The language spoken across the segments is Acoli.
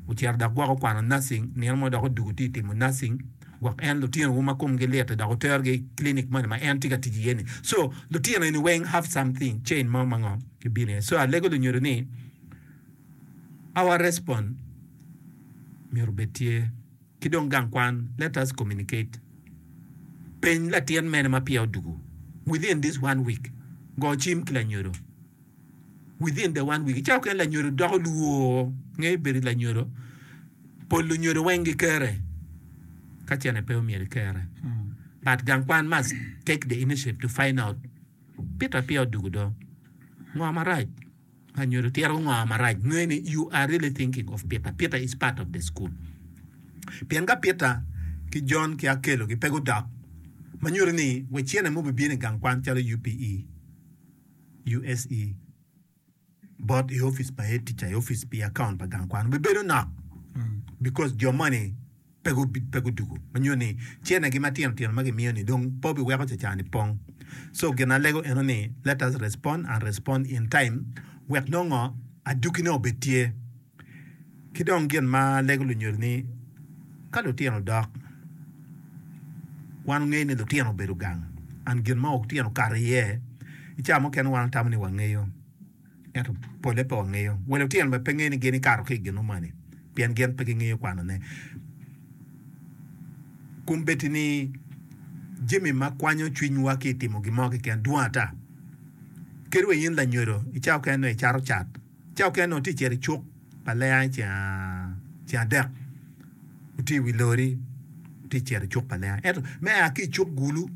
Wucito dok gwok wukwano nursing nino mo dok odwogo tye ka timo nursing gwok en lutinowu ma komgi lit-ti dok wuterogi i clinic moni ma en tye ka tic iye ni. So lutino eni weng have something chain mo ma ngo gibino iye. So alego lunyodo ni our respond myero obed tye. Ki dong gang kwan let us communicate. Peny latin mene ma peya odwogo within this one week. Go cim ki lanyodo within the one week ca okene lanyodo doko lwor nge ibedi lanyodo pol lunyodo weng gi kere ka cene pe omyero ikere mm. but gang kwan must take the initiative to find out pita pia odugu do ngo marac lanyodo tiro ngo marac nge ni you are really thinking of pita pita is part of the school pien ka pita ki john ki akelo ki pe gudok manyuto ni wacine mo bibino i gang kwan calo upe USE, bot i office pa head teacher i office pi account pa gang kwan be bedo nok because jo moni pe gu pe gudugu ma nyo ni cene gi matino tino ma gimiyo ni dong po bi weko caca ni pong so gin alego eno ni let us respond and respond in time wek nongo adukine obed tye Ki dong gin ma lego lunyodi ni ka lutino dok, wan ongeyo ni lutino obedo gang and gin ma lutino okato iye i cawa mukene wan otamo ni wangeyo ento pole pe wangeyo. Wa lutino bene pe ngeyo ni gin ikato ki i gin mumani pien gin pe gingeyo kwano ne. Kun bedi ni jami ma kwanyo cwiny wa ki i timo gin mo kiken dwong ata. Kadi wa in lanyodo i cawa mukene nongo icato cat. Cawa mukene onongo itye ka cito i cuk pa lenga ceng adek itye i wi lori itye ka cito i cuk pa lenga ento me a ki i cuk gulu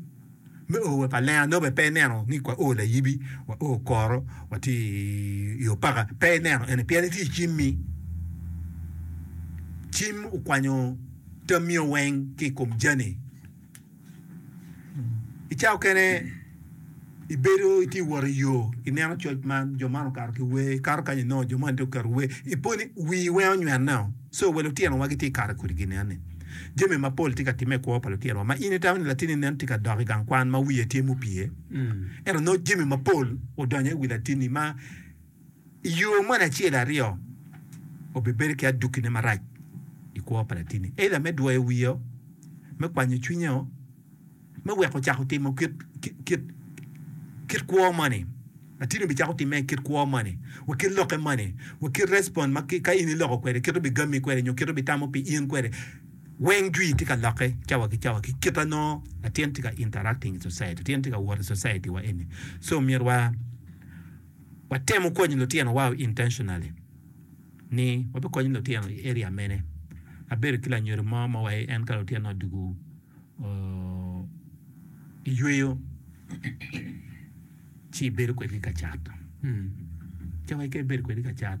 me o wa pa lenga nongo bene pe ineno ni wa o layibi wa o koro watye i opaka pe ineno eni pien itye i cimmi cim okwanyo tammi weng ki i kom jami. I cawa okene ibedo itye ka wot i yo ineno coc man jo man okato ki wer ikato kany inongo jo man tye guketo wer iponi wii weng onywene o so wa lutino wa gitye ka kato kwede gin eni jami mapol tye ka timme i kwo pa lutino wa ma in itamo ni latini nen tye ka dok i gang kwan ma wiye tye mupye ento nongo jami mapol odonyo i wi latini ma I yo moni acel aryo, obibedo ki adukkine marac i kwo pa latinni, eira me dwoyo wiye, me kwanyo cwinye, me weko cako timo kit kwo moni. Latinni obicako timme i kit kwo moni, wa kit lokke moni, wa kit respond ma ka in iloko kwede, kit obigammi kwede nyo kit obitamo pi in kwede. Weng jwi tye ka lokke cawa ki cawa ki kit ma nongo latin tye ka interacting i society, latin tye ka wot i society-wa eni. So myero wa. Watemo konyo lutino wa intentionally ni wabikonyo lutino i area mene. Abedo ki lanyodo mo ma wa en ka lutino odwogo i yweyo ci bedo kwedgi ka cat. Ca wa keken bedo kwedgi ka cat.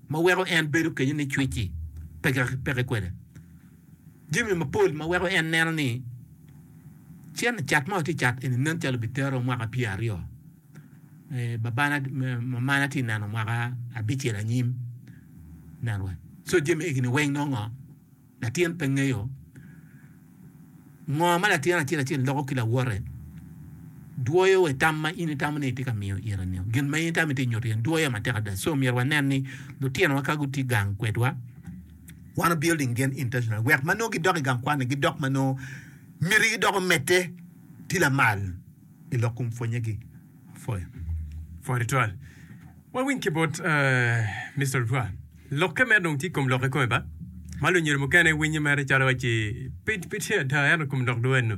ma weko en bedo kenyo ni cwec-ci peke kwede, jami mapol ma weko en neno ni cen cat ma watye ka cat eni nen calo bitero mwaka pyer aryo, babana, mamana tye ka neno mwaka abicel anyim. Ineno? So jami egi weng nongo ngo? Latin pe ngeyo ngo ma latin acel acel loko ki lawote. Dwoyo wa i tam ma in itamo ni itye ka miyo ire-ni. Gin ma in itamo ni itye ka nyuto ire-ni dwoyo matek ada. So myero wanen ni lutinowa ka gutye gang kwedwa, wan wa building gen intentionally wek ma nongo gidok i gang kwan-ni gidok ma nongo mitigi dok omedde tye lamal i lokkom pwonnyegi. Pwony twal. Wawiny ki bot Mister Lutwa. Lokke mere dong tye i kom lok kikome ba. Ma lunyere mukene winyo mere calo waci pe pe tye ada ento i kom lok dong enno.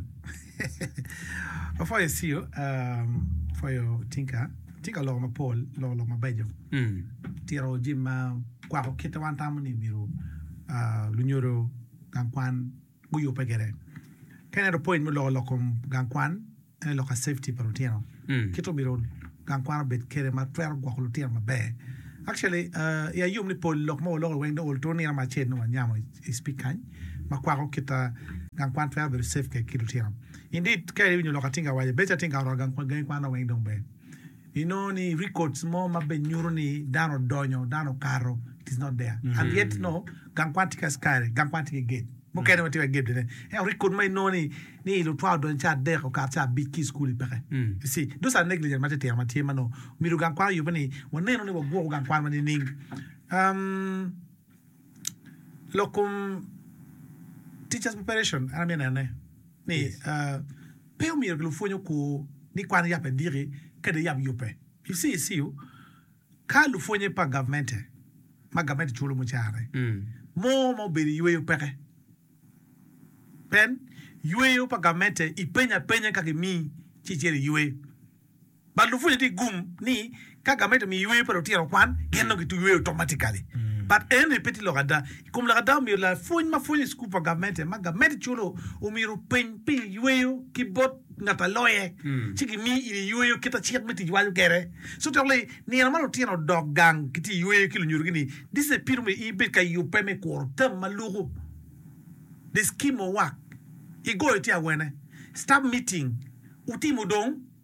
Apwoyo Ceo, um, apwoyo Tinka. Tinka oloko mapol, oloko lok mabeco. Mm. Tito jami ma kwako kite wan tamo ni myero ah, lunyodo gang kwan guyubbe kwede. Ka ineno point me loko lok kom gang kwan ene lok ka safety pa lutino kit omyero gang kwan obed kwede ma twero gwoko lutino maber. Actually i ayub ni pol lok ma waloko weng dong oto nino mo acel dong wanyamo i speak kany ma kwako kit ma gang kwan twero bedo safe kwede ki lutino. Indeed ka iwinyo lok atinga awaco bedo calo atinga oromo gangi kwan dong weng dong ber. Inongo ni records mo ma be nyuto ni dano odonyo, dano okato it is not there and yet you know gang kwan tye ki askari, gang kwan tye ki gate mukene ma tye wa gate bene. Ento record ma inongo ni ni lutwa odonyo ca adek okato ca abic ki i school i peke. You see, those are negligence ma titino ma tye ma onongo omyero gang kwan oyubbe ni waneno ni wagwoko gang kwan ma nining. Um. Lok kom Teachers Preparation an amyero nene ni pe omyero lupwony oku ni kwan yap ediki ka dong yap yubbe you see i CU ka lupwonye pa gavmente ma gavmente culo mucara mo ma obedo i yweyo peke pien yweyo pa gavmente ipenyo apenya ka gimiyi ci icito iywe. But lupwonye tye gum ni ka gamente omiyo yweyo pa lutino okwan, gin nongo gitwero yweyo automatically. But eni pe tye lok ada. I kom lok ada omyero lapwony ma pwonyo i cukul pa gamente ma gamente culo omyero openy pi yweyo ki bot ngat a loye ci gimi in iyweyo kit a cik me tic waco kede. So dok li nino ma lutino odok gang ki tye yweyo ki lunyodo gi ni this is a period omyero in ibed ka yubbe me kuro term ma luku the scheme of work igoyo tye awene staff meeting wutimo dong.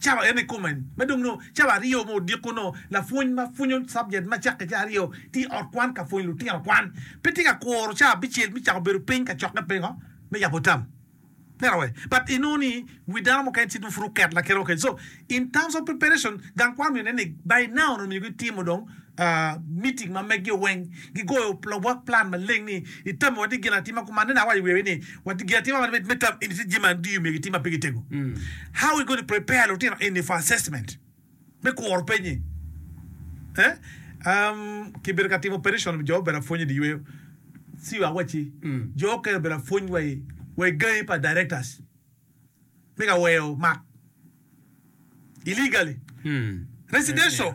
Calo en ikome ma dong nongo calo aryo ma odiko nongo lapwony ma pwonyo cabjet ma cakke ca aryo tye i ot kwan ka pwonyo lutino kwan. Pe tye ka kuro ca abicel me cako bedo piny ka cokke pingo me yabo tam pera wek but inongo ni wi dano mukene tye dong pud oket lakite mukene so in terms of preparation gang kwan myero nen ni by now onongo myero gitimo dong Meeting ma meggi weng gigoyo lobwak plan maleng ni itami wati gin atima kuma aneno awaco wiya wi ni wati gin atima man me tam eni tye jami ma andiyo myero gitim ma pe gitego how we going to prepare lutino eni for assessment me kuro penye eeh kibedo ka timo petition jo obedo apwony idi yweyo see wa waci jo okene obedo apwony wa i gangi pa directors me ka weyo mak illegally residential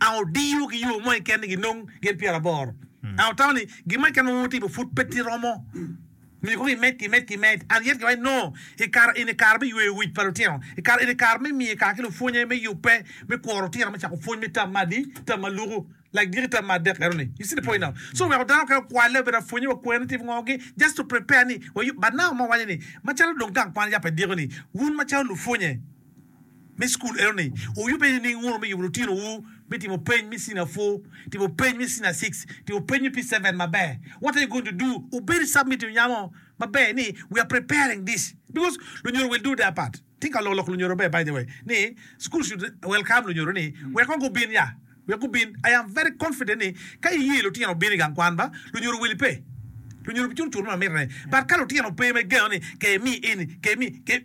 Ang odiyo ki yo mo keken ni ginong gin pyeraboro? Ang otamo ni gin mo keken ma wutimo pud pe ti romo? Myero kong imed ki imed ki imed. Ang iyet ki wai nongo i kare eni kare me yweyo wic pa lutino? I kare eni kare me miyo kare ki lupwonye me yubbe, me kwo lutino, me cako pwony me tam me adi, tam ma luku, like giki tam me adek eno ni. You see the point now? So weko dano mukene okwale, obedo apwonye, wakwer ni tim ngo gi, just to prepare ni wayub. But now ma waco ni, macalo dong gang kwan aye pe diko ni, wun macalo lupwonye, me cukul enoni oyubbe nining? Nguru me yubo lutinowu me timo peny me Senior Four, timo peny me Senior Six, timo peny me P-Seven maber. What are you going to do? Obedi submit nya mo maber ni we are preparing this because lunyodo will do their part. Tye ka loko lok lunyodo maber by the way ni school should welcome lunyodo ni wek kong gubin ya, wek gubin. I am very confident ni ka iye lutino bino i gang kwan ba lunyodo will pe. Lunyodo bicur cur ma mitine but ka lutino pe ma igeno ni kemi eni, kemi, kemi.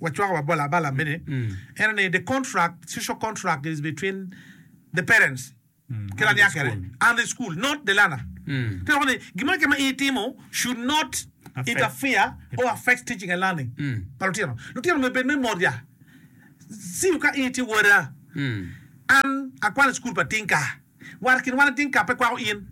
Wacwako wa bol abala mene ene ni the contract social contract is between the parents ki laniya kene and the school not the learner te woko ni gin mo keken ma in itimo should not interfere or affect teaching and learning pa lutino lutino myero bed me mot ya siyo ka in itye wada an akwano i school pa tinka. War kin wan ating ka pe kwako in.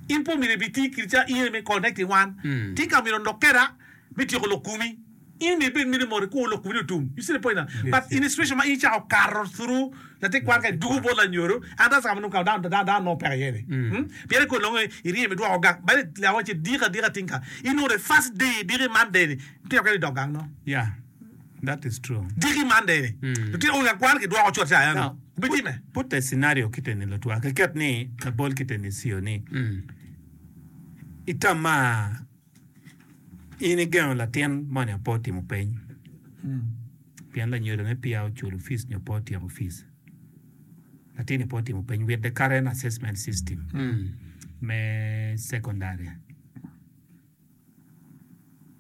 In pe omyero ibi ti kiri ca in aye me connecting wan. Ting ka omyero onok keda me tyeko lok kumi. In omyero ibed miti moti ku lok kumini otum. You see the point na? But in a situation ma in icako kato through latin kwan ka idwogo bot lanyodo, an rasa ka ma nongo ka dano dano dano nongo peke iye ni. Hmm? Pien ikwo nongo iryem idwoko gang. Badi laa wacci diki adika tingka. In nongo the first day idiki Monday ni, ipito kene idok gang nongo. Yeah. That is true. Tiki man dei ni lutino wun ka kwan ki dwoko cot caya ni bi time. Now put a scenario kite ni lutwa ki ket ni labol kite ni Ceo ni Itamar in igengo latin moni ape otimo peny pien lanyodo ne peya oculo fees nyo pe otyeko fees latin ni pe otimo peny with the current assessment system me secondary.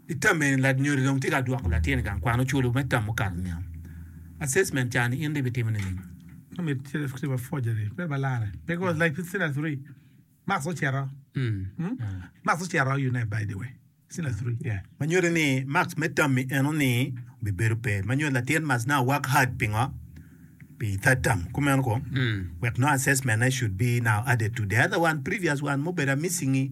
I tam eni, ladnyodi dong tye ka dwoko latin i gang kwano culu me tam mukato niang, assessment, ca ni in dong ibitimo nining? Ma nyuto ni mak me tammi enoni bibedo pe ma nyuto latin must now work hard pingo pi third term kumeno kong wek nongo assessment ne should be now added to the other one previous one mubedo a missing-ngi.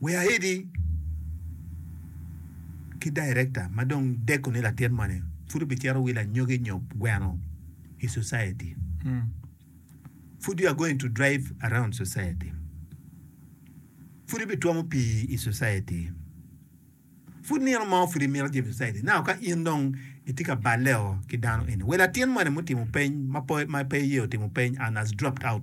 We aidi ki director ma dong deko ni latin moni pud obicito wilo anyogi nyo gweno i society. Pud you are going to drive around society. Pud ibitwomo pii i society. Pud nino mo pud imito jami i society. Now ka in dong itye ka balleo ki dano eni. We latin moni mutimo peny ma pe ma pe iye otimo peny and has dropped out.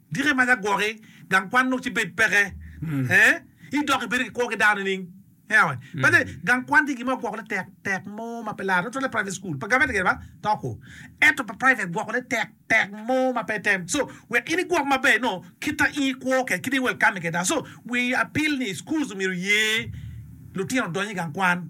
Dikke ma jagwoki gang kwan lok ci bed peke i dok ibedo ki kwo ki dano nining? Bade, gang kwan tye gin ma ogwokone tek tek mo ma pe lar. Tutwalle private school, pa gavment keken ba to kwo. Ento pa private gwokone tek tek mo ma pe tem. So, wek in igwok maber ino kita in ikwo kede kita i welcoming kede dano. So, wi apil ni schools omyero oye lutino odony i gang kwan.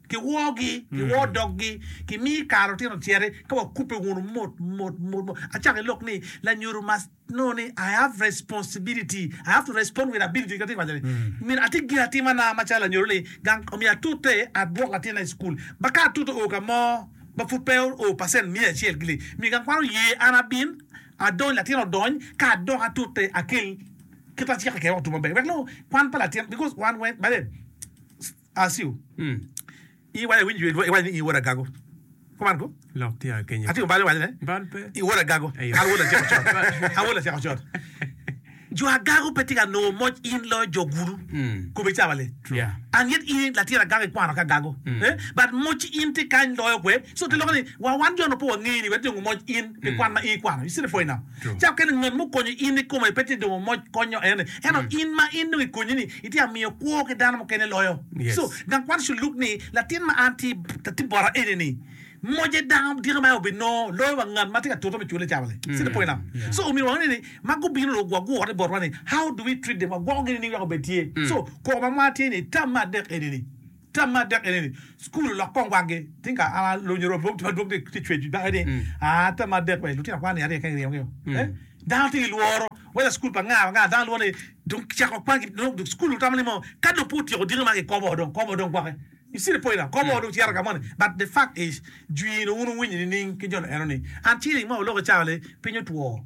Kiwoogi, kiwoo doggi, kimi kare otyeno cere ka wakubbe wunu mot mot mot mot. Acako i lok ni, lanyodo must know ni I have responsibility, I have to respond with ability kit ma atye ka waco ni. Myero atim gin atima na macalo lanyodo ni gang omiyo atute adwok latinna i cukul ma ka atute oo ka mo ma pud pe oo percent miya acel gi li myero gang kwan oye an abin adony latin odony ka adok atute akel kit ma cik ociko kwede wek lutuk maber wek nongo kwan pa latin because wan weng bade Asio, In iwaco awinyo dwe iwaco ni in wod agago. Kuman ku, Atingo bal iwaco ne in wod agago, an wod latyeko cot, an wod latyeko cot. Jo agago pe tye ka nongo moc in loyo jo gulu kome cawa le. And yet in latin agago ikwano ki agago. But moc in tye kany loyo kwe. So te lokke ni wa wan jo nongo pe wangeyi ni wet nongo moc in pi kwan ma in ikwano. You see the point now? Cako kene, ngat ma okonyo in ikome pe tye dong omoc konyo en, ento in ma in dong ikonye ni itye ka miyo kwo ki dano mukene loyo. So, dok wan cu luk ni latin ma an tye latin bota eni ni moce dano dyaka ma obinongo loyo wa ngat ma tye ka tute me cwale cawa ni. See the point now? So, omyero wa wangene ni ma gubino dong wagure botwa ni how do we treat them, wagwoko gi ni ni wek obed tye. So, koko ma mwatye ni tam me adek eni ni. Tam adek eni ni, Cukul olok kong wagi. Ting ka an alonyo romi mogo madwong tye ka cweco dako ni, aa, tam adek be lutino kwan-ni arye keken giryemo gio. Ee, dano tye ki lworo, wela cukul pa nga wa nga, dano lworo ni dong kicako kwan ki, nongo dong cukul lutamo ni mo ka dong pe otyeko diki ma gikobo dong kobo dong gwoko. You see the point now? Kobo dong cito ka moni. But the fact is, jwino wun wuwinyo nining ki jo lueno ni, an ceng ma oloko cawa-le, piny otwo.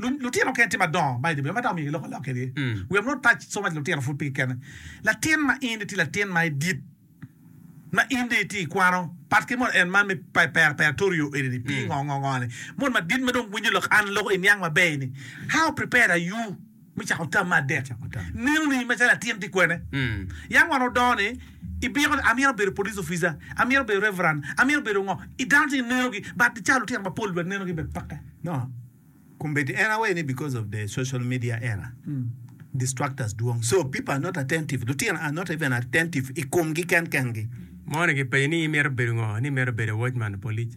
Lutino mukene tye madongo ma idye boma ma dok omyero gilok alok kegi. Wer meno tac somo mac lutino pud pigi kene. Latin ma in itye latin ma idit, ma in dong itye ikwano, pat ki mot en man me preparatorio eni-ni, pingo ngo ngo ngo ni. Mot madit ma dong winyo lok an loko iniang maber-ni, How prepared are you? me cako tam me adek. Nino ni macalo atin tye kwene, yam wan odongo ni ibiko ni amyero abedo police officer, amyero abedo reverend, amyero abedo ngo. I dano tye gineno gi but cawa lutino mapol bene neno gi bene peke. No, kombeddi en awayi ni because of the social media era, distractors dwong so people are not attentive, lutino are not even attentive i komgi ken kengi. Moni kipenyo ni imito bedo ngo, ni imito bedo watchman, police.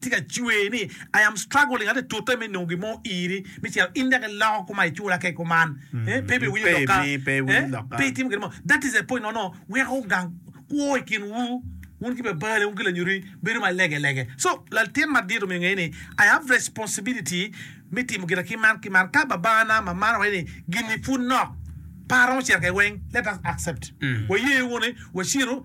Tye ka cwer ni, I am struggling, atye ka tute me nongo gin mo iri me ciro. In dok iloko koma, icula kek kuman. Pe ibino winyo lok ka pe itimo gin mo. That is the point nono weko wugang kwo i kinwu, wun ki babalewu ki lanyutwu bedo ma lege lege. So, latin madit omyero onge ni, I have responsibility me timo gina ki man ki man. Ka babana, mamana waco ni gini pud nok, pe aromo ciro kede weng, let us accept. Waye wunu ni waciro.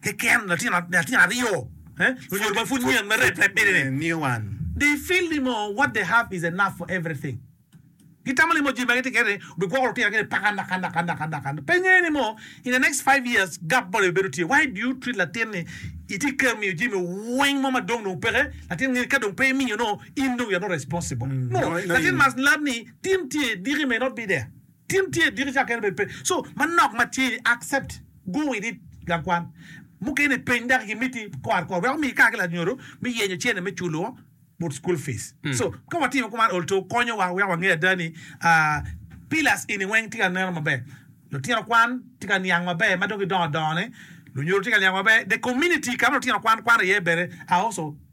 Keken latin latin aryo lunyodo ma pud nyen ma rep rep bene ni new one they feel ni mo what they have is enough for everything gitamo ni mo jami ma gitye kede ni bigwoko lutino gi ni paka naka naka naka naka pe nge ni mo in the next five years gap moni bibedo tye why do you treat latin ni itye kero miyo jami weng mo ma dong dong peke latin nge ni ka dong pe imiyo no in dong you're not responsible no latin must learn ni tin tye diki may not be there. Tin tye diki ca kene bed pe so manok ma tye i accept go with it gang kwan mukene peny daki gi miti kor kor wek omi kar ki lanyodo me yenyo cene me culo but school fees so ka watimo kuman olto konyo wa wek wange ada ni pillars eni weng tye ka neno maber lutino kwan tye ka niang maber madong gidongo dongo ne lunyodo tye ka niang maber the community kama lutino kwan kwan iye bene are also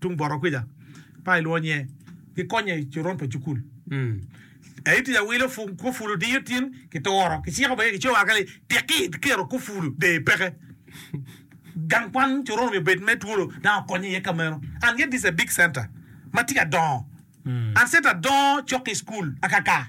Tung bota kwica, pa ilwongo nyinge, gikonye i coron pa cukul. Ka itye ka wilo kufulu diyo tin, kituro, kiciko bene kicoyo kaka ni tek iketo kufulu der peke. Gang kwan coron omyero obed me twolo dang okonye iye ka meno. And yet this a big center ma tye ka dongo. And center dongo cok ki school akaka.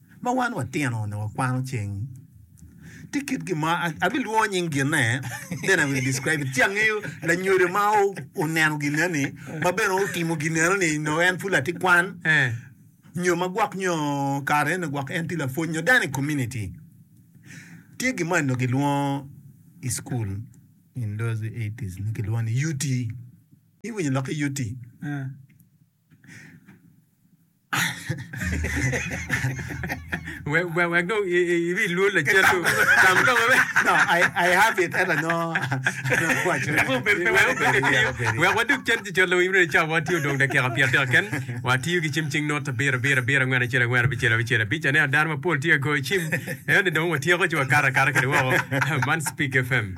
ma wan watino onongo wakwano cing tye kit gin mo abilwongo nying ginne then I will describe it ci angeyo lanyodo ma oneno ginneni ma bene otimo ginneno ni nongo en pud latin kwan eh. nyo ma gwok nyo kare eno gwok en tye lapwony nyo dano i community tye gin mo eno gilwongo i school in those 80s ni gilwongo ni UT iwinyo lok ki UT eh. Wek dong ibi ilwol lacen dong. Tam ka ma No, I, I have it. Ela no. Wek wadog cen ci colo imre ca watiyo dong dakika pyer adek ken. Watiyo ki cim cing not abiro abiro abiro angwen acel angwen abicel abicel abic. Aneno dano mapol tye ka goyo cim. Ene dong watyeko ci wakato akata kede woko. Man Speak FM.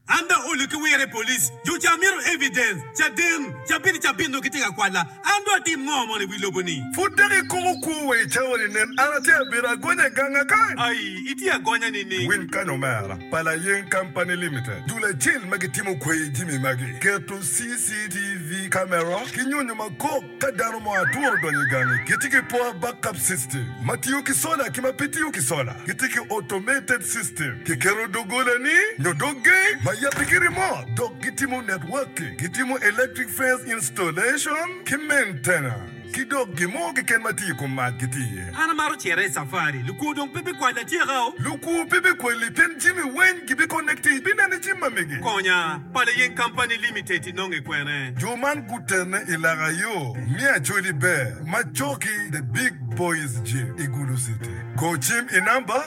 An dok olu ki wira i police jo ca mito evidence caden cabit cabit nongo gitye ka kwala an dong atim ngo mono i wi lobo ni. Pud dok ikumo kwo wa i cawa ni nen an atye abito agonya i ganga kany. Ai itye agonya nining. Winy kany omera pa Layeng Company Limited dul acel ma gitimo kweyo jimi magi keto CCTV camera ki nyonyo makok. Ka dano mo adwong odonyo i gangi, gitye ki poor backup system, ma tiyo ki sola ki ma pe tiyo ki sola. Gitye ki automated system, kiketo doggolani nyo dog gate ma yabbe ki remote, dok gitimo networking, gitimo electric fence installation ki maintenance, ki dok gin mo keken ma tye i kom mac gitye iye. An amaro cere i safari. Lukwo dong pe bikwala atyeka-o. Lukwo pe bikwali pien jami weny gibiconnecti ibineno jami ma mege. Konya, Pala Yen Company Limited. inongo ikwene. Jo man gutene i laka yo me Acholi Ber ma coki The Big Boys Gym i Gulu City. Go cim i namba,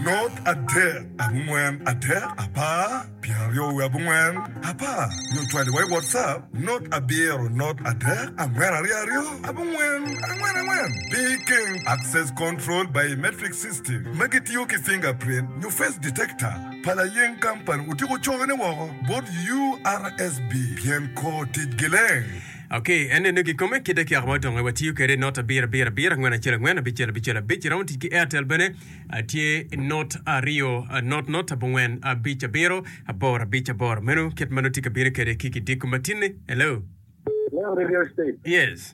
Not adek, abongwen, adek, apar, pyeraryo wiye abongwen, apar, nyo cwali wa i WhatsApp, Not abiro, not adek, angwen aryo aryo, abongwen, angwen angwen. Pi keng, Access Control Biometric System ma gitiyo ki fingerprint nyo face detector. pa layeng kampani otyeko cokone woko bot URSB pien kor tic gileng. Ok, en nenu gi kome kit dek yaka ma otonge wa tiyo kede not abir abir abir angwen acel angwen abicel abicel abic iromo tic ki Airtel bene atye not aryo not not abongwen abic abiro aboro abic aboro menu kit ma nongo tye ka bino kede ki ki diko matinni. Hello. Hello, Radio State. Yes.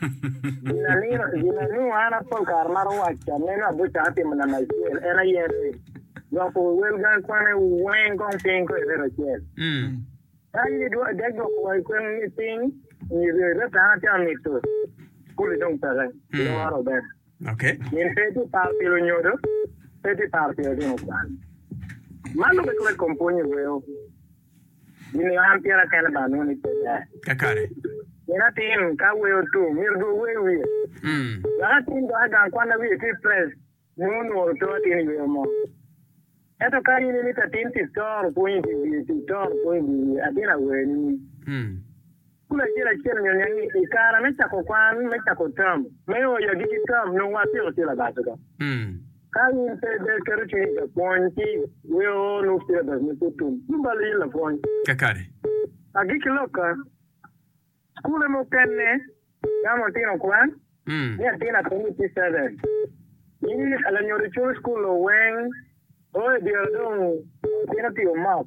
Gin anunu an apol kare maro waco aneno abuca atimo namba acel en aye ni gwoko wel gang kwane weng kong piny ko ireto acel. Kany ni dwa dek gwoko wai kwen ni piny ni reto an atya mito kuli dong peke loro ben. Okay. Min pe ti par pi lunyodo pe ti par pi otino kwan. Man lube kore kom pwonyo weo. Gimiyo an tira kene ba anwong ni pe ber. Kakare. Min atin ka wer otur, myero dong ower wiye. Dok atin dok i gang kwan ma wiye tye i press, nongo onuro oto atin i yo mo. Ento ka in imito atin tic toro pwony i dye wiye, tic toro pwony i dye wiye, atin awer nining? Kun acel acel onyonyo ni, I kare me cako kwan, me cako tam, me oyo agikki tam, nongo watyeko cilabas oko. Ka in pe ibed keto cwiny i ka pwony, ci wek onuk cilabas ma pe tum tum balo in lapwony. Kakare. Agikki loka, cukule mukene tamo ltino kwan ni atin atum i P-seven. Ci lanyodo culu cukul-lu weng o i dyere dong otino pi omok.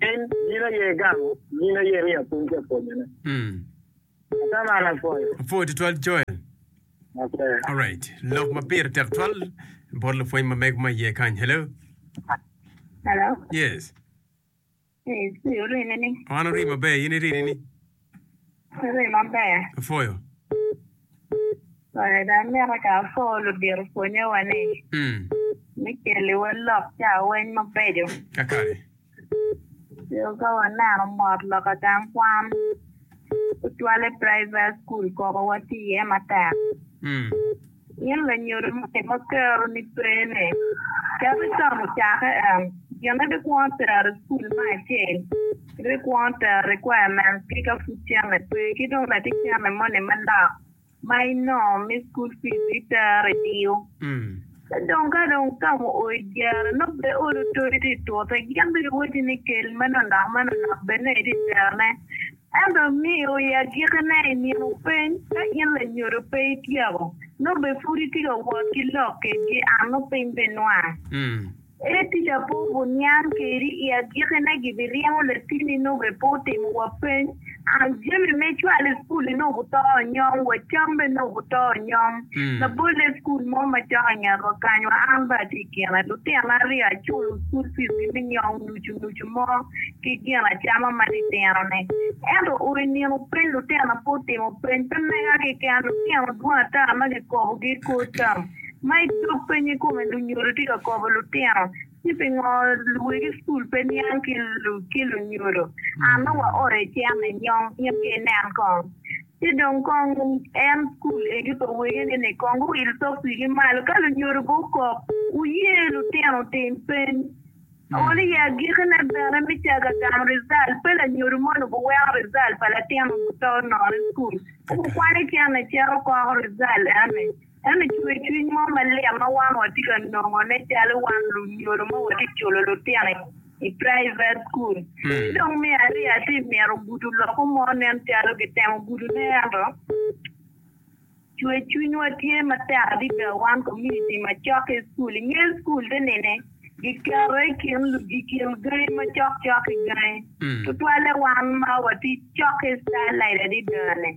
Piny, gin aye gamo, gin aye ni apwony ki apwonyone. Mm. Ata man apwoyo. Apwoyo tutwal Joel. Ate. Alright. Lok ma pire tek twal bot lapwony ma mego ma iye kany. Hello. Hello. Yes. Yes, ori mene. An ori maber, in iri ni. Rii maber. Apwoyo. Pwony dong mito ka apwo ludito pwonyowa ni me keli wa lok cawaweny mabeco. Kakare. Coo ka waneno mot lok atam kwan tutwale private school koko wati iye matek. Gin lanyodo ma kero ni pene keto can ocake en gine bikwongo tero icukul me acel ki bikwongo tero requirements ki ka pud cene pe ki dong bene ki cene moni me lok ma inongo me school fees itero idiyo ci dong ka dong otamo oo ijere nongo pe olo todi tye itute gin bene wacci ni kel meno lok meno lok bene itero ne Ento amiyo i agikine i nino peny, ka in lanyodo pe ityeko, nongo bene pud itye ka wot ki lok kedgi, an nongo piny pe inwanga. Ere tic ape obu niang kedi? I agikine gibiryemo latini nongo bene pe otimo wa peny, an jami me cwalo i cukul-li nongo obu to onyom, wa cam bene nongo obu to onyom, labolle i cukul mo macok i nget wa kany wa an bene atye i kine, lutino aryo aculo cukul fees gi me nyom. ocunucu mo ki gin acama ma litino ne. Ento ur i nino peny lutino pe otimo peny pe mega keken lutino dwong ata ma ki kobo gi i kor tam ma i dog peny i kome lunyodo tye ka kobo lutino ni pingo luwegi school pe niang ki ki lunyodo a nongo wa oro i cen ni nyong in ki inen kong ci dong kong en school egi pa wege ni ni kong gu wil tok wigi malo ka lunyodo be okok wuye lutino otim peny. Aol iye agiki ne bene me caga gamo rizal pe lanyodo moni guweko rizal pa latino muto nono i cukul ci gukwanye cen ni cito koko rizal eni eni cwer cwiny mo malit ma wan wa tye ka nongo ne calo wan lunyodo ma wa tye culo lutino i private cukul ci dong me aryo atye mito gudo loko mo nen calo gitemo gudo ne ento Cwer cwinywa tye matek adada wan komuniti ma cokke i cukul. I nge cukul te nene, giketo i kin lugi i kin gangi macok cok ki gangi, tutwalle wan ma watye cokke i Starlight adada-ni.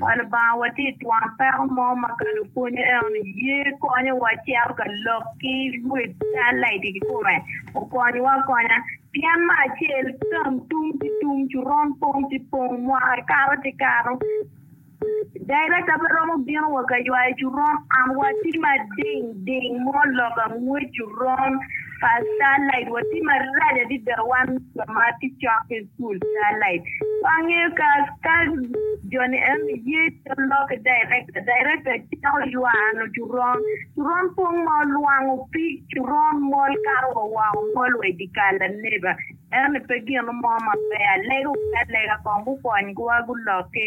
Wa Lubanga, watye i twon peko mo ma ka lupwonye eno-ni ye konyowa cito ka lok ki luet Starlight i kikome, okonywa akonya. Pien me acel, tam tum ki tum, coron pong ki pong, mwaka kato ki kato. Director pe romo bino wa ka ywayo coron am wa tye ma ding ding mo lok angwec coron pa starlight wa tye ma rac adida wan jo ma tye cok ki school starlight wa ngeyo ka ka joni eni ye calo loki director director cako ywano coron coron pong ma olwango pig coron mol kato wa woko mol wa idikal aneba Ento pe gino mo maber alego ki alega kong gukony gwa gulok ki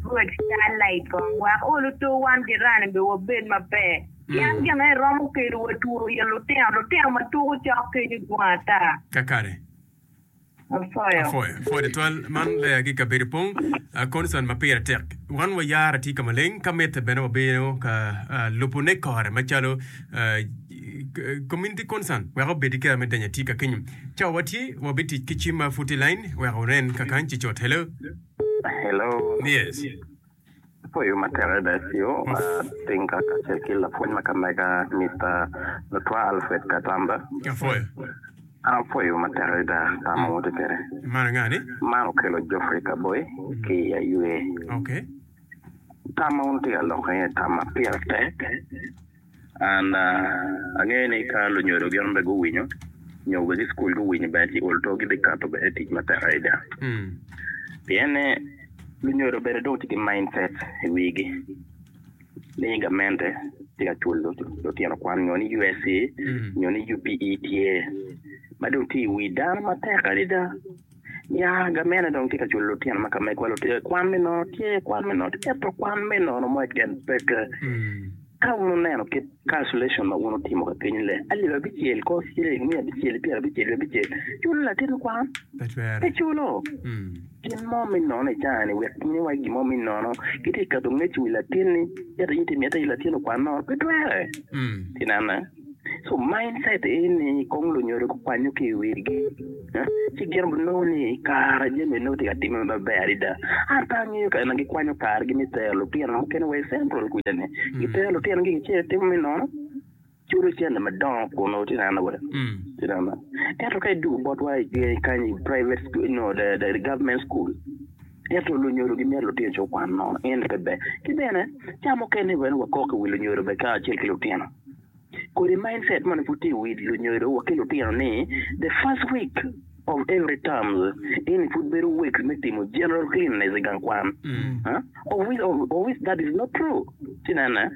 Rwod Starlight kong wek oluto wan ki rani be wabed maber pien gin aye romo kelo wa two ye lutino lutino ma tuko cok kenyo dwong ata. Kakare. Afoyo. Afoyo. Afoyo tutwal. Man lega ki kabedo pong. A concern ma pire tek. Wan wayara tye ka maleng ka mitte bene wabino ka lubo ne kore macalo. Community Concern wek obed i kare me denyo atika kenyo. Cawa watye, wabitic ki cim ma pud tye i line wek wunen ka kany ci cut. Hello? Hello. Yes. Apoyo ma tere Decio, ating ka kacel ki lapwony ma kamega Mister Lutwa Alfred Katamba. Apwoyo. An apoyo ma tek adada tam ma woto kwede. Man anga ni? Man okelo Geoffrey Kaboi ki i ayue. Okay. Tam ma wun tye ka loko iye tam ma pire tek. An angeyo ni ka lunyodo gin onongo bene guwinyo nyo obed ki cukul guwinyo bene ci ol two gibikato bene tic matek adada. Pien ni lunyodo bene dong tye ki mindset i wigi ni gamente tye ka culo lutino kwan nyo ni USC nyo ni UPE tye ma dong tye i wi dano matek adada. Ya, gamene dong tye ka culo lutino ma ka megwa lutye i kwan me nono, tye i kwan me nono, ento kwan me nono mo keken peke. Ka wun oneno kit calculation ma wun otimo ka kenyu le, alip abicel ko ciling miya abicel pyera abicel wi abicel, culo latin kwan? Pe twere. Pe culo. Gin mo me nono i cani wek in iwagi gin mo me nono, kitye ka keto ngec i wi latinni, ento in itye ka miyo ata in latin okwan nono? Pe twere. Tinanne. So mindset eni kong lunyodo gukwanyo ki i wigi, ci gin gunongo ni i kare jami nongo tye ka timme maber adada. An pe angeyo kare na gikwanyo kargi me tero lutino mukene wa i Central kwija-ni. Gitero lutinogi gitye ka timo me nono, culo cente madongo kun otinana wa. Tinana. Ento ka idugo botwa i i kany i private school, no, the, the government school, ento lunyodo gimito lutino ci okwan nono. Eni pe ber. Ki bene, ca mukene bene wakok i wi lunyodo bene kacel ki lutino. kodi mindset moni pud tye i wi lunyodo wa ki lutino ni the first week of every terms eni pud bedo week me timo general cleanliness i gang kwan huh? of which, of, of which that is not true ci nene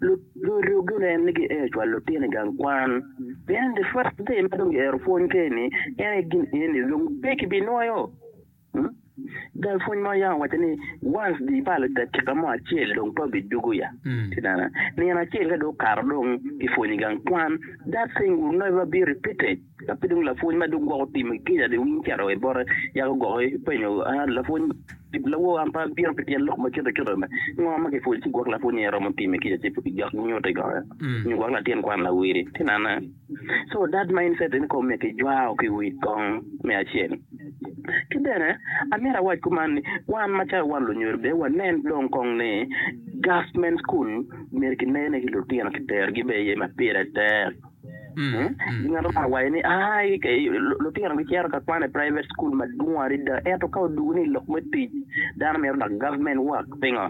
Lu- lu- lugine en ni giero cwalo lutino i gang kwan pien the first day ma dong giero pwony keni en aye gin eni dong pe kibinwoyo Cal pwony mo yam owaco ni once di ibalo dakika mo acel dong pe obijugu ya ki dano nino acel ka dong okato dong kipwonyi gang kwan that thing will never be repeated ka pe dong lapwony ma dong gwoko timo i Kenya dong in cito i bote yako gwoko ipenyo lapwony lawor an pe abino pi tyen lok ma cuto cuto ni ngo ma kipwonyi ci gwok lapwony ni aye romo timo i Kenya ci pe kijok nyuto i kome nyo gwok latin kwan lawili tinana. So that mindset in kome ki jwao ki wi kong me acel. Ki bene amyero awac kuman ni wan macalo wan lunyodo bene wanen dong kong ni government school myero ki ner ne ki lutino ki tero gi bene iye ma pire tek. Ngat ma waye ni ai lutino gi cero ka kwan i private school madwong adada ento ka odugu ni lok me tic dano myero lok government work pingo?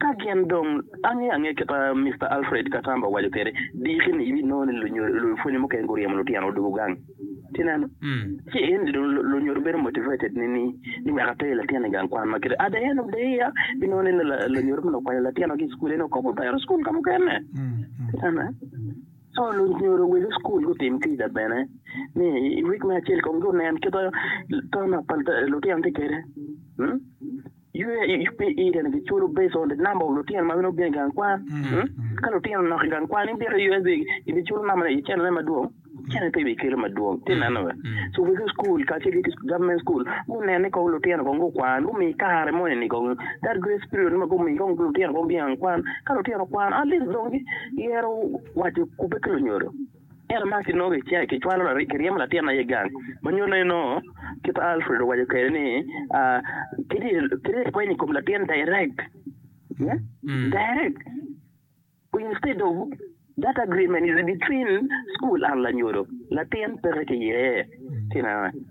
Ka gin dong ange ange kit ma Mister Alfred Katamba owaco kwede, diki ni ibinongo ni lunyodo, lupwonye mukene guryemo lutino odwogo gang. Tineno? Ci eni dong lunyodo bedo motivated ni, ni, ni wek ater latin i gang kwan ma kit-ti. At the end of the year, ibinongo ni la, lunyodo meno okwanyo latino-gi i cukul, en okobo otero cukul ka mukene. Tineno? So, lunyodo wegi cukul gutim kica bene, ni i week me acel kong gunen kit ma ton ma pa, lutino tye kwede. Hum? UAPE bene giculo based on the number of lutino ma bino obino i gang kwan. Ka lutino nok i gang kwan ni bito i UAPE gibiculo number ne i channel ne madwong, channel pe bikelo madwong. Tye neno be. So wegi school kacel ki government school gunen ni kong lutino kong gukwan, gumi kare moni ni kong that grace period ma gumi kong lutino kong gingang kwan. Ka lutino okwan at least dong giyero waco kubbe ki lunyodo. Ento ma kinongo kicito kicwalo laryek kiryemo latin aye gang ma nyuto ni nongo kit ma Alfred owaco kwede ni kiti ipwenyo i kom latin direct direct instead of that agreement is between school and lanyodo latin peke ki yee.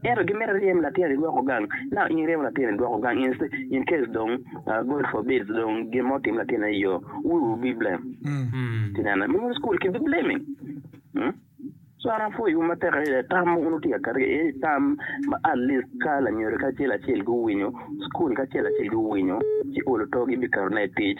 Ento gimito ryem latin idwoko gang. Now in iryemo latin idwoko gang in, in case dong uh, God forbid dong gin mo otim latin i yo, who will be blame? Tinene, me wun school ki be blaming. Hmm? So an apwoyo wun matek adada tam ma wun wutye ka kati eni tam ma at least ka lanyodo kacel acel guwinyo, school kacel acel guwinyo, ci olo togi biketone i tic.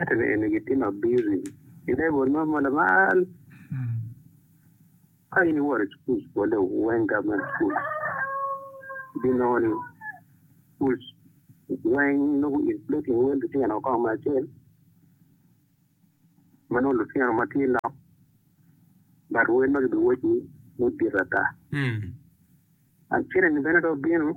Ento ni eni gitye ma bizi i level mo ma lamal. Ka in iworo i cukul bole weng government school, ibinongo ni schools weng nongo inflating wel lutino kong me acel, ma nongo lutino ma tye nok, but wel ma gibiwocci mudit ata. An cene ni bene dong bino.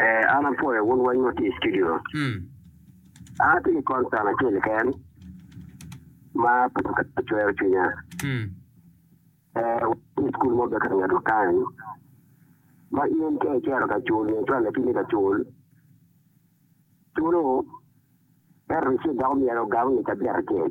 Ee, an apwoyo wun weng ma tye i studio. An atye ki concern acel keken ma pe okete cwero cwinya. Ee, watye i cukul mo Becker ngeto kany ma in ka icito ka cul nyo cwal lapini ka cul, culo ento receipt dok omyero ogam ngeca abiro acel.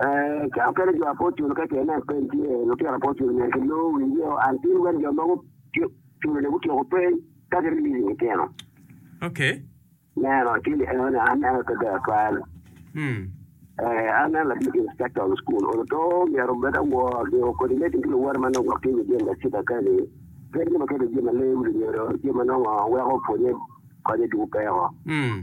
Ee, ka okelo jo apocul ka ce nen peny tye, lutino apocul myero kilor wiyeo an tin wek jo mogo culone gutyeko peny ka giriliyo litino. Ok. Neno, ci ni eno ni an neno te ber twal. Mm. Ee, an neno latic inspector of school olo to myero obed awor ni coordinating ki luwote ma nongo gwok tye i jim ma cita kani. Ped jo ma kedo jim ma lewu lunyodo, jim ma nongo weko pwonye konye dugu peko. Mm.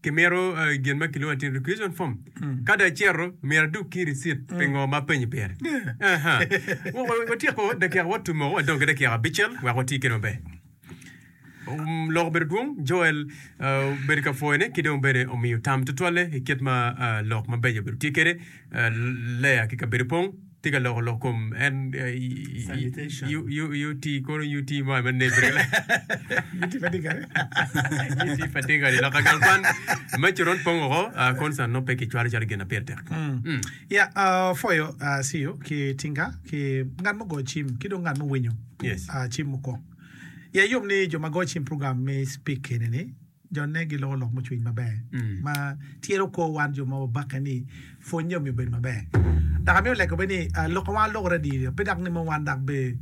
Kimito gin ma kilwongo ni tin requisition form. Ka dong acito, myero adug ki ricit pi ngo ma apenyi pire. Aha. Wa- wa- Watyeko dakika watu moko, wadong ki dakika abicel wek wati kwede maber. Um, Lok obedo dwong, Joel ah, obedo ka pwoyone ki dong bene omiyo tam tutwalle i kit ma ah, lok mabeco obedo tye kwede. Leya ki kabedo pong tye ka loko lok kom en UT kono UT mo me nebre UT pa dingare UT pa dingare lok agal kwan me coron pong oko concern no pe ki cwalo calo gin na pire tek ya foyo siyo ki tinga ki ngat mo go cim ki dong ngat mo winyo cim mukong ya yom ni jo ma go cim program me speak enini Jonne giloko lok mucwiny maber ma tyen okwo wan jo ma wabakke ni pwonnye omiyo obedo maber. Dok amito lego bene ni lok ma wan walokere adiri pe dok nimo wan dok bene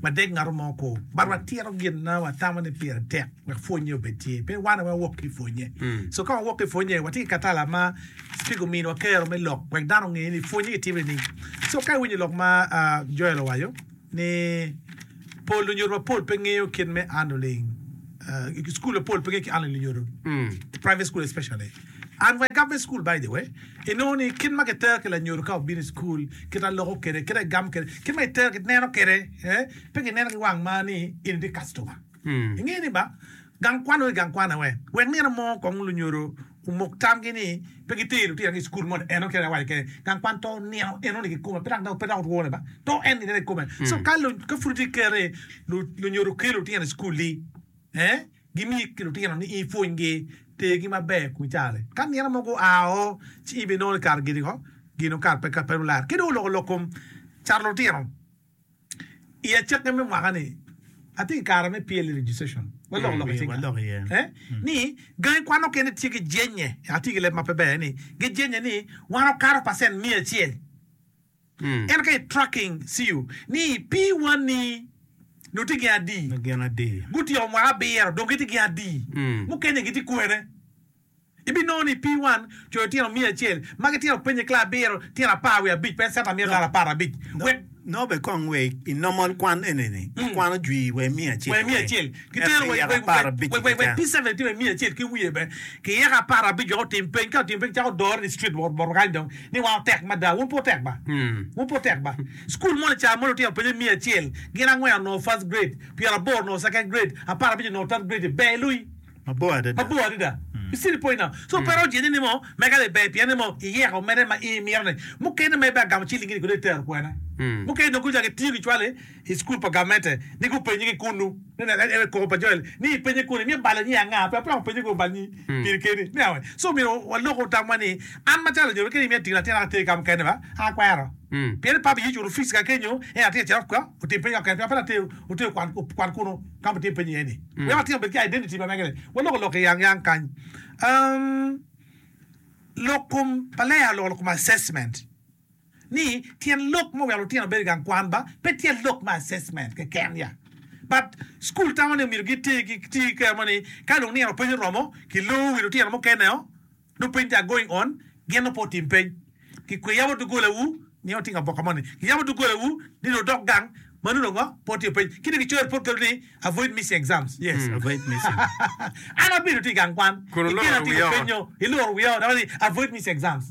wadeg ngat mo kwo but watito gin ma watamo ni pire tek wek pwonnye obed tye pe wan aye wawok ki i pwonnye. So ka wawok ki i pwonnye watye ki katala ma Cipika ominwa kero me lok wek dano onge ni pwonnye kitimo nining. So ka iwinyo lok ma Joel owaco. ni pol lunyodo mapol pe ngeyo kit me andoling i school mapol pe ngeyo ki andoling lunyodo i private school especially and wa i government school by the way i nongo ni kit ma kitero ki lanyodo ka obino i school kit ma loko kede kit ma igamo kede kit ma itero ki neno kede eh pe gineno ki wang ma ni in i customer Ingeyo ni ba gang kwan onongo i gang kwan awe? Wek nino mo kong lunyodo omok tamgi ni pe gitero lutinagi i cukul mo ni eno kene awaco kene gang kwan to nino enoni kikome pe dok pe dok otwone ba to en nino kikome so ka ka pud itye kikete lunyodo kelo lutino i cukul di gimiyi ki lutino ni i pwony gi tergi maber i kom caro-ri ka nino mo gua oo ci ibinongo ni kare gini ko gin okato pe pe lularo ki dong oloko lok kom caro lutino. I acakki me mwaka-ni, atye ki kare me PLE registration, waloko lok i cinga, ni gangi kwan mukene tye ki jennye, atye ki leb ma pe ber ni gijennye ni wan wakato pacent miya acel. Ento ka i tracking CU ni pi wanni nongo tye gin adi, gutyeko mwaka abiro dong gitye gin adi, mukene-ni gitye kwene? Ibinongo ni pii wan coyo tino miya acel ma gitino peny i kla abiro, tino apar wiye abic pe centa miya dola apar abic wek. Nobe kong we i nomol kwan eneni ikwano jwii wa i miya acel wa i miya acel ki tero wa i wek apar abic wek wek pii centa tino i miya acel ki wiye be ki yaka apar abic wek otim peny ka otimo peny cako dore ni street bot bot kany dong ni wan otek mada wun pe otek ba wun pe otek ba school moni ca moni otino peny i miya acel gin angwen onongo first grade pyera aboro onongo second grade apar abic onongo third grade ber ilui mabor adada ki cilipoin nao. So pe roc iye ni mo mega ni ber pien ni mo iyeko mere ma in imito ni mukene ma ibe agamo ciling ni kono itero kwena. Mukene dong gucako gitiyo gicwalo i cukul pa gamente ni gupenye ki kunu ni wek en koko pa Joel ni ipenye kunu imito balo nyi anga pe wapeko penye kong bal nyi piri keni me awe. So myero waloku tamwa ni an macalo onyodo kadi imiyo atingo latin aka ater kika mukene ba aka kwero pien ni papa Yecu ocuto fees kaka kenyo en atinga cito oko otim peny kaka mukene pien pe later oter okwan kunu. Kama tye penyo iye ni, Wek watino bed ki identity pa mege ni, waloko lok i yang yang kany. Um, lok kom pa leya oloko lok kom assessment. Ni, tyen lok ma oweko lutino bedo i gang kwan ba, pe tyen lok me assessment keken ya. But, school tamo ni omyero giti ki, ti ki kero mo ni, ka dong nino piny oromo, ki loo wi lutino mukene o, Lub piny tar going on gin nongo pe otim peny ki kwe yabo doggola wu nio tingo aboka moni ki yabo doggola wu ni nongo dok gang ma nongo ngo pe otiyo peny ki dong ki coyo report kadu ni avoid missing exams yes avoid missing an abedo ti igang kwan ikela timo penyo iluru wiya o dok ni avoid missing exams.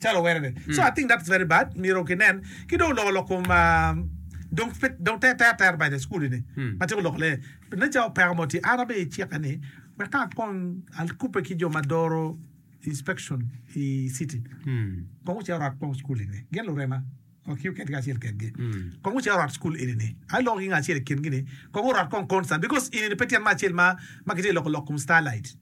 calo were ni so I think that's very bad myero ki nen ki dong loko lok kom dong dong ter ter ter bene I school ni ma tyeko loko lee pi nature opeko mo tye an abe icike ni wek ka kong akube ki jo ma doro inspection I city kong gucito rwat kong school eni gin lurema ok you keken acel kedgi kong gucito rwat school eni ni ayi loko ki ngat acel I kin gi ni kong orwat kong concern because eni ni pe tyen me acel ma ma kitye loko lok kom starlight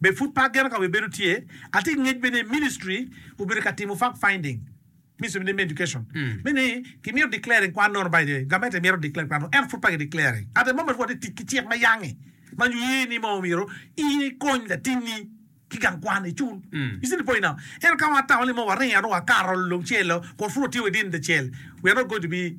Be pud pe ageno ka wibedo tye? Atye ki ngec bene ni ministry obedo ka timo fact finding, Ministry of Name Education, me ni kimito declaring kwan nono by the government ento mito declare kwan nono ento pud pe ki declaring at the moment watye ka tic ki cik ma yange ma nyo ye ni ma omyero in ikony latinni ki gang kwan icul, you see the point now, ento ka watamo ni ma waringo wakato lungcel-lo kun pud watye within the cell we are not going to be.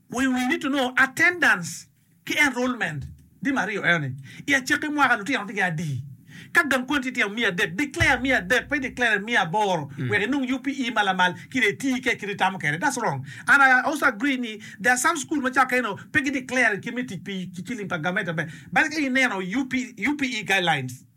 We wii ni tungo attendance ki enrollment di maryo eno ni, I acakki mwaka lutino tye ki adi? Ka gang kwan tye tye miya adek, declare miya adek pe declare miya aboro wek inong UPE ma lamal ki dong itii kec kit itamo kede. That's wrong and I also agree ni there are some school macalo keno pe gi declare kit me tic pi ciling pa government maber bale ka ineno UPE guidelines.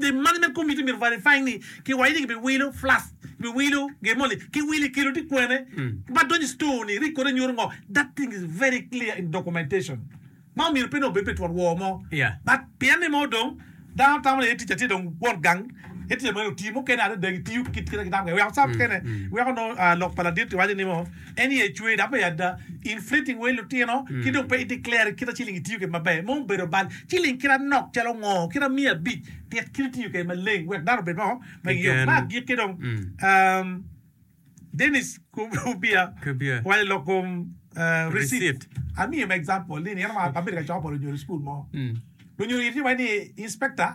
Gin magi me komi tye myero verify ni kiwaco ni ki bi wilo flask, ki bi wilo gin moni, ki wilo ikelo tye kwene ma donyo i store ni record ne nyuto ngo, that thing is very clear in documentation ma omyero pe nongo bed pi twon wor mo but pien ni mo dong dano tamo ni aye ticca tye dong won gang aye ticca meno oti mukene adada gi tiyo kit kit ma gitamo kwede weko ca mukene weko nongo lok pa ladit kiwaco ni mo. En aye cwer dok me ada. In fleeting wei lutino ki dong pe i declare kit a ciling itiyo kwede maber. Mo obedo bal ciling kit anok calo ngo kit a miya abic tit kit itiyo kwede maleng wek dano obed mo ma gi yom. Ma agikki dong umm Dennis Kubia waco lok kom receipt amiyo me example ni in abedo ka coko pa lunyodo i school mo lunyodo gitye wai ni inspector.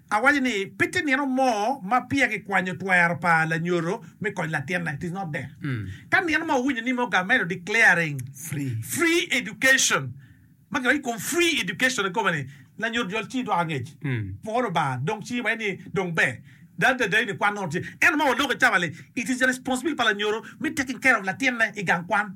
Awaco ni pe tye nino mo ma peya kikwanyo twero pa lanyodo me konyo latinne, it is not there. Ka nino ma wuwinyo ni me ogamedo declaring free education ma kidonyo ikom free education i kome ni lanyodo jol ci idwok angec pwor Lubanga dong ci iwaco ni dong ber dano tye adayoni kwan nongo tye ento ma waloko cawa li it is the responsibility pa lanyodo me taking care of latinne igang kwan.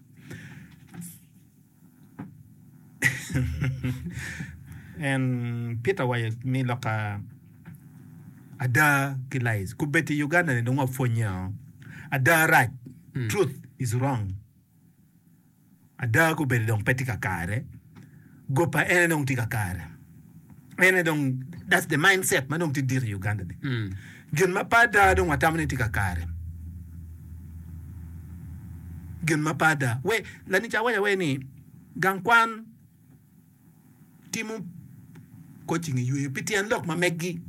Peter owaco ni lok ada ki lies kubed i Uganda ni dong wapwonye oo ada rac truth is wrong ada kubed dong pe tye kakare. Go pa en aye dong tye ka kare. En aye dong that's the mind set ma dong tye dit i Uganda ni. Gin ma pe ada dong watamo ni tye ka kare. Gin ma pe ada. We, lanica waco awaca ni gang kwan timo coaching i yweyo pi tyen lok ma meggi.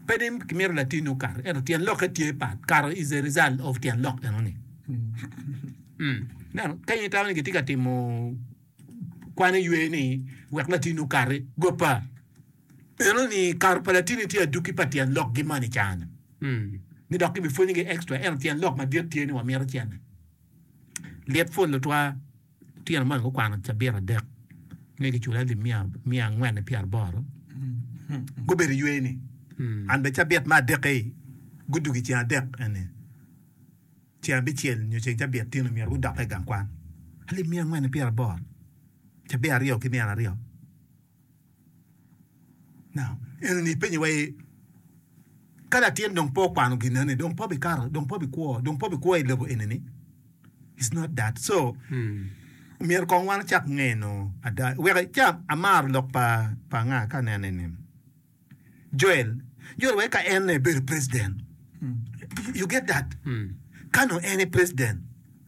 Pe ni kimito latinni okato, ento tyen lokke tye pat. Kato is a result of tyen lok enoni. Ineno, ka in itamo ni kitye ka timo kwan iywe ni wek latinni okati, goppa. Enoni kato pa latinni tye adwoki pa tyen lokgi man i caa-ni. Ni dok kibipwonyogi extra, ento tyen lok madit tye ni wamito cene. Lit pol tutwal. Lutino moni gukwano cabit adek me gicula alip miya miya angwen-ni pyera aboro. Gubedo iywe ni, an bene cabit me adek-ki gudug i ceng adek eni. Ceng abicel nyo ceng cabit tin omyero gudokke i gang kwan. Alip miya angwen-ni pyera aboro, cabit aryo ki nino aryo. Now, enini ipenye wai, ka latin dong pe okwano gineni, dong pe bikato, dong pe bikwo, dong pe bikwo i level enini? It's not that. So, myero kong wan wacak ngeno ada. Wek ca amaro lok pa pa nga ka anene ni Joel, Joel wai ka en ebedo president. You get that? Ka nong en e president,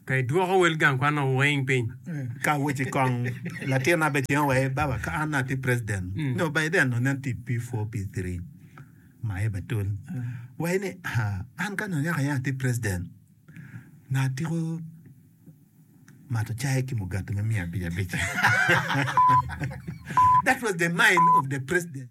Pe idwoko wel gang kwan o weng piny. Ka weci kong latin na be cen wa aye baba ka an ati president nyo Biden nyo nen ti P4 P3 ma aye ba tul wai ni an ka nyo nyaka aye ati president nyo atiko mato cai ki mugati me miya abic abic that was the mind of the president.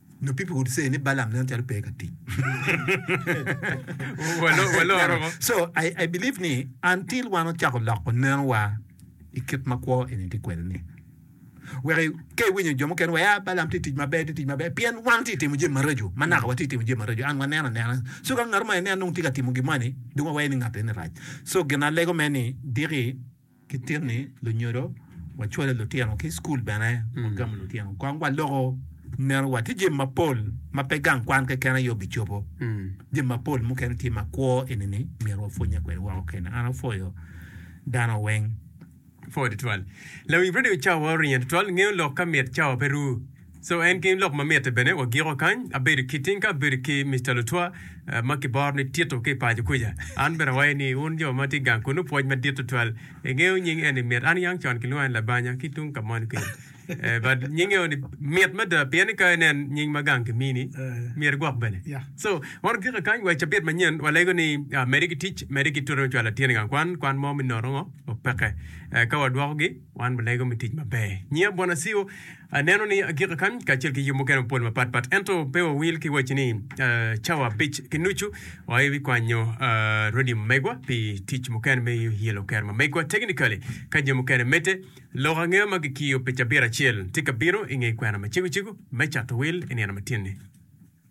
Nyo people would say ni Balaam nen calo pe ka tic. So I, I believe ni until wan ocako loko nenowa i kit ma kwo eni tye kwede ni wek i- ka iwinyo jo mukene wa ya Balaam tye tic maber tye tic maber pien wan tye timo jami maraco ma naka watye timo jami maraco and waneno anena so ka ngat mo ene anong tye ka timo gin mo eni dong wawaye ni ngat eni rac so gin alego me ni diki Ki tic ni lunyodo, wacwalo lutino ki i cukul bene, wagamo lutino kong waloko nerowa. Tye jami mapol ma pe gang kwan keken aye obicobo. Jami mapol mukene tye ma kwo eni ni myero wapwonnye kwede woko kene. An apwoyo dano weng. Pwod twal. Lawiny Radio Cawa oringe tutwal ngeyo lok ka mit cawa pe ru. So en gin lok ma mitte bene wagiko kany. Abedo ki tinka abedo ki Mister Lutwa ma kiboro ni Tito ki i paco kuca. An bene awayo ni wun jo ma tye gang kunnu pwoc madit tutwal. Ingeyo nying eni mit. An yang con kilwonga ni Labanya ki tung ka moni kenyo. Eh, but nying eo ni mit mada pien ni ka inen nying ma gang kimini myero igwok bene. So wan ogiko kany wa i cabit manyen walego ni ah, mede ki tic, mede ki tute me cwalo latin i gang kwan, kwan mo me nono ngo, opeke. Eh, ka wadwokogi wan walego me tic maber. Nyinga Bwana Siwo. Aneno ni agika kany kacel ki yub mukene mapol mapat pat, ento pe wawil ki wacci ni cawa abic ki nucu oa i wi kwanyo rwodi megwa pi tic mukene me yelo kero ma megwa. Technically, ka jo mukene medde, lok angeya ma kikiyo pi cabit acel tye ka bino i nge kwena ma cegocego me cato wil i nino matinni.